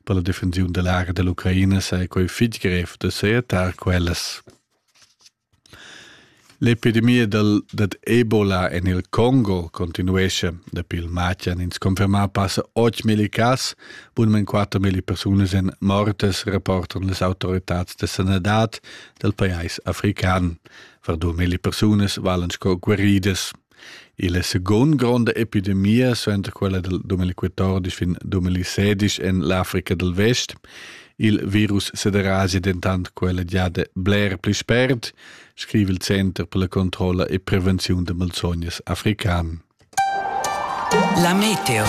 Per la defensiun da l'aria da l'Ucraina saja quai fitg grev da sajettar quellas. L'epidemia dal, dad Ebola en il Congo continuesce. Dapi il matg han ins confermà passa 8.000 cas, bunmain 4.000 persunas èn mortas, rapportan las autoritads da sanadad dal pajais african. Var 2.000 persunas valen sco guaridas. Il è segund gronda epidemia suenter quella dal 2014 fin 2016 en l'Africa dal Vest. Il virus sederasi dentant quella giada bler pli spert, scriva il Center per la controlla e prevenziun da malsognas african. La meteo.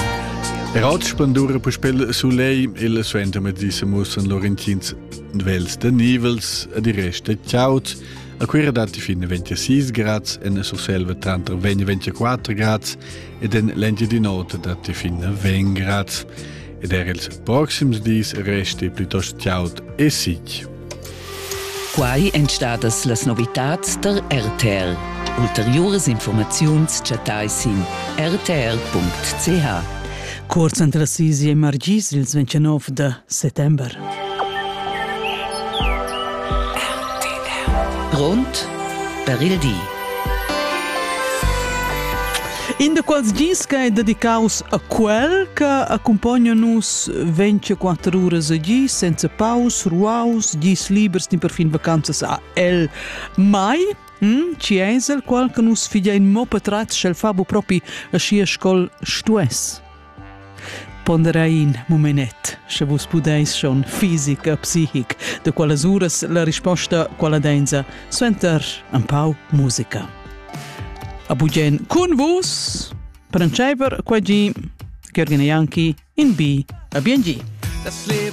Er oz spandura puspel sulei il suentermedis mussen Laurentins vels da nivels e di resta ciaut. A Cuira datti fin 26 grads, en Surselva tranter 20 e 24 grads ed en l'Engiadin'Ota datti fin 20 grads. Ed er ils proxims dis resti plitost chaud e sic. Quai èn stadas las novitads der RTL. Ulteriuras informaziuns chattai sin rtl.ch. Cuorz entras sis e margis ils 29 da settember. Grund per il di. In de quals gis che è dedicaus a quel che accompagna nus 24 ore a gis senza paus, ruaus, gis libers din per fin vacanzas a el mai Hm, chi ais el qual che nus figein mo patratgs sch'el fa bu propi aschia sco'l stuess? Ponderein mumenet, sche vus pudeis schon fisic e psichic, de qualas uras la risposta quala dainza suenter un pau musica. A bugen cun vus, Prancheiver quagi, Gergina Janki in bi, a biengi.